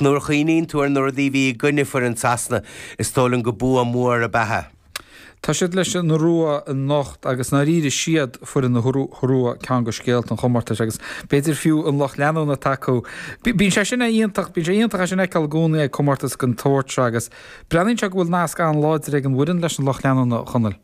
Nuair a chuimhníonn tú ar na rudaí a bhí i gcoinne foireann Sasana, is dóigh liom gur bua mór ab ea é. Tá siad leis an Iorua anocht agus i ndáiríre is iad foireann na hIorua ceann de scéalta an chomórtais agus b'fhéidir fiú an lucht leanúna atá acu. Bíonn sé sin iontach, bíonn sé iontach é sin a fheiceáil i gcónaí ag comórtas den tsórt seo agus breathnaíonn sé go bhfuil nasc an-láidir ag an bhfoireann leis an lucht leanúna, a Chonaill.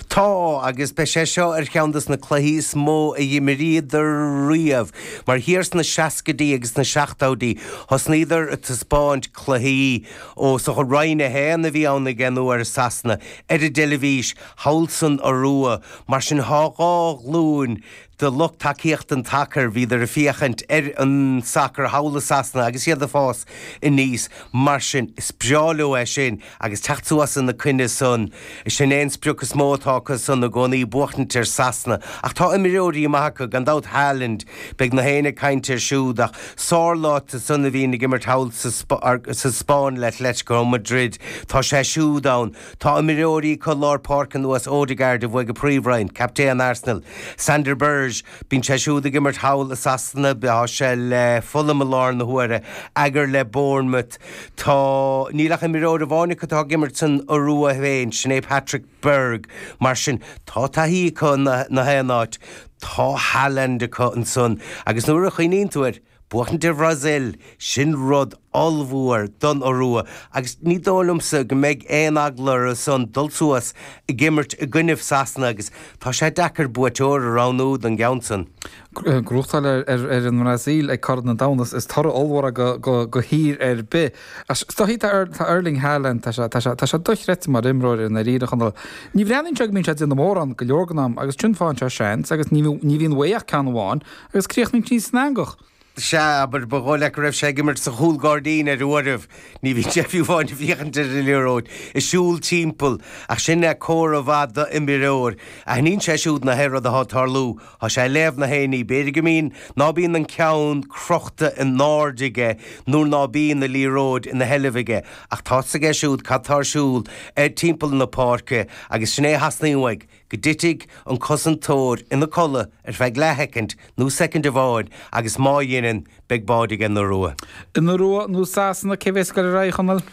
Tá, agus beidh sé seo ar cheann de na cluichí is mó a d'imríodar riamh, mar thiar sna seascaidí agus sna seachtóidí thosnaíodar a taispeáint cluichí ó, sa, Roinn 1 a bhí ann ag an uair, i Sasana, ar an dteilifís, thall san Iorua, mar sin thá dhá ghlúin, de lucht tacaíochta an tsacair, bhíodar ag féachaint ar an sacar thall i Sasana agus iad ag fás aníos. Mar sin, is breá leo é sin agus teacht suas ina coinne san. Sin é an sprioc is mó atá acu san i gcónaí, buachtaint ar Sasana. Ach tá imreoirí maithe acu, gan dabht, Haaland, beidh na héinne ag caint air siúd, ach Sørloth ansan a bhíonn ag imirt thall sa Spáinn le Atlético Madrid, tá sé siúd ann. Tá imreoirí acu lár páirce ar nós Odegaard a bhuaigh an Príomhroinn, captaen Arsenal, Sander Berge, bíonn sé siúd ag imirt thall i Sasana, tá sé le Fulham i lár na huaire, Ajer le Bournemouth, tá. níl ach imreoir amháin acu atá ag imirt san Iorua féin, sin é Patrick Berg. Mar sin, tá taithí acu in na haon áit. Tá Haaland acu ansan agus nuair a chuimhníonn tú air, Buachaint ar Bhrasaíl, sin rud ollmhór don Iorua agus ní dóigh liomsa go mbeidh aon eagla orthu san dul suas ag imirt i gcoinnibh Sasana agus tá sé deacair buaiteoir a roghnú don gceann san. Gnóthachtáil ar an mBrasaíl ag Corn an Domhain is toradh ollmhór do thír ar bith. Is dóichí tá Erling Haaland, tá sé, tá sé, tá sé dochreidte mar imreoir i ndáiríre, a Chonaill. Ní bhreathnaíonn sé go mbíonn sé ag déanamh mórán go leor den am agus ansin faigheann sé seans agus ní bhíonn uaidh ach ceann amháin, Agus críochnóidh sí san eangach. Sea, abair, ba dhóigh leat go raibh sé ag imirt sa chúlghairdín ar uairibh. Ní bhíonn sé fiú amháin ag féachaint ar an liathróid ag siúl timpeall. Ach sin é comhartha maith d'imreoir. Aithníonn sé siúd na haon rud athá ag tarlú. Thá sé ag léamh na héinní. B'fhéidir go mbíonn, ná bíonn an ceann crochta in airde aige nuair ná bíonn an liathróid ina sheilbh aige. Ach tá's aige siúd cad tá ar siúl timpeall na páirce agus sin é a theastaíonn uaidh. go dtitfidh an cosantóir ina codladh ar feadh leathshoicind nó soicind amháin agus má dheineann, beidh báide ag an Iorua. An Iorua nó Sasana, cé bhéas ag goil ar aghaidh, a Chonaill?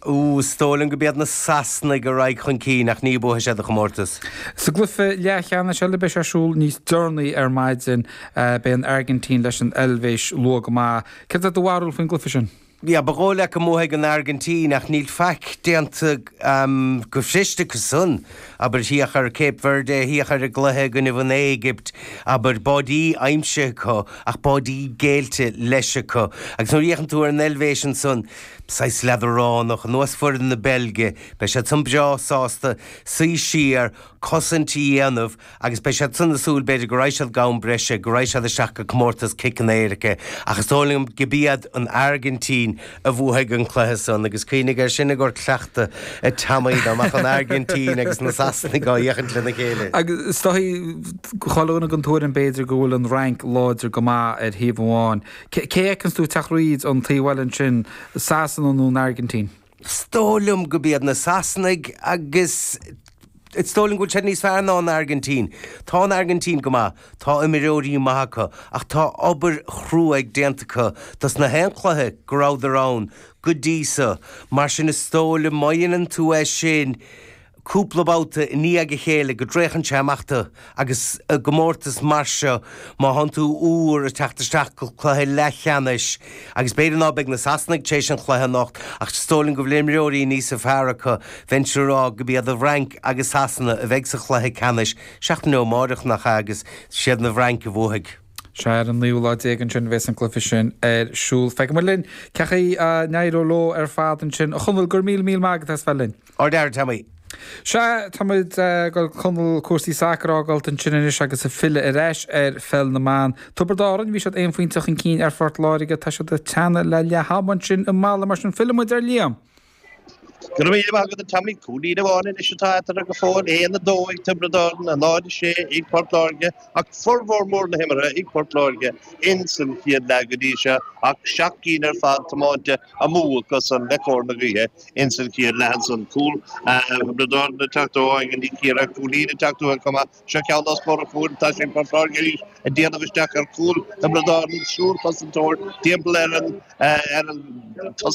Ooh, is dóigh liom go mb'iad na Sasanaigh a raghaidh chun cinn ach ní bhuafaidh siad an comórtas. Sa gcluife leathcheannais eile a bhéas ar siúl níos deireanaí ar maidin, beidh an Airgintín leis an Eilvéis luath go maith. Céard é do bharúil faoin gcluife sin? Yeah, ba dhóigh leat go mbuafaidh an Airgintín, ach níl faic déanta go fuirist acu san, abair. Féach ar Cape Verde, féach ar an gcluiche i gcoinnibh an Éigipt, abair. Báidí aimsithe acu, ach báidí géillte leis acu. Agus nuair a fhéachann tú ar an Eilvéis ansan, saghas leadránach, ar nós foireann na Beilge, beidh siad san breá sásta suí siar, cosaint a dhéanamh, Agus beidh siad san ag súil b'fhéidir go raghaidh siad go ham breise, go raghaidh siad isteach go Comórtas Ciceanna Éirice. Ach is dóigh liom go b'iad an Airgintín a bhuafaidh an cluiche san. Agus cuimhnigh air sin i gcomhair cleachtadh, a Teamaí, dá mbeadh an Airgintín agus na Sasanaigh á fhéachaint lena chéile. Agus is dóigh go bhfuilimíd den tuairim b'fhéidir go bhfuil an Fhrainc láidir go maith ar thaobh amháin. Cé a fheiceanns tú ag teacht fríd an taobh eile ansin, Sasana nó an Airgintín? Is dóigh liom go b'iad na Sasanaigh agus is dóigh liom go bhfuil siad níos fearr ná an Airgintín. Tá an Airgintín go maith, tá imreoirí maithe acu ach tá obair chruaidh déanta acu dos na haon chluiche go rabhadar ann go dtí so. Mar sin is dóigh liom má dhéanann tú é sin, cúpla babhta i ndiaidh a chéile go dtraochann sé amach tú agus i gcomórtas mar seo má thánn tú úr ag teacht isteach go cluiche leathcheannais agus b'fhéidir ná beidh na Sasanaigh tar éis an chluiche anocht ach is dóigh liom go bhfuil imreoirí níosa fearr acu bheinnse ag rá go b'iad an Fhrainc agus Sasana a bheidh sa chluiche ceannais seachtain ó amáireach nach ea agus siad na Francaigh a bhuafaidh. Sea, ar an naoú lá déag ansin a bhéas an cluiche sin ar siúl. Feicfimid linn cén chaoi a n-éireoidh leo ar fad ansin. A Chonaill, go raibh míle míle maith agat as bheith linn. Ardfhear, a Teamaí. Sea, táimid gan Conall, cúrsaí sacair a fhágáilt ansin anois agus ag filleadh ar ais ar Pheil na mBan. Tiobraid Árainn, bhí siad aon phointe chun cinn ar Phort Láirge, tá siad ag teannadh le leath-am ansin i Mala, mar sin fillimid ar Liam. Go raibh míle maith agat a Teamaí. Cúilín amháin anois atá eatarthu go fóill, 1-2 ag Tiobraid Árainn, 0-6 ag Port Láirge, ach furmhór mór na himeartha ag Port Láirge ins an chéad leath go dtí seo, ach seacht gcinn ar fad tiomáinte. amú acusan le cóir na gaoithe ins an chéad leath san. Cúl Thiobraid Árann ag teacht ó Anna Ní Chiardha, cúilíní ag teacht ó Chonghaile, Cuma? Seo ceann dá scór a fuair an tá sé ag Port Láirge arís a' déanamh isteach ar chúl Thiobraid Árann, an triúr cosantóir timpeall ar an tosaí,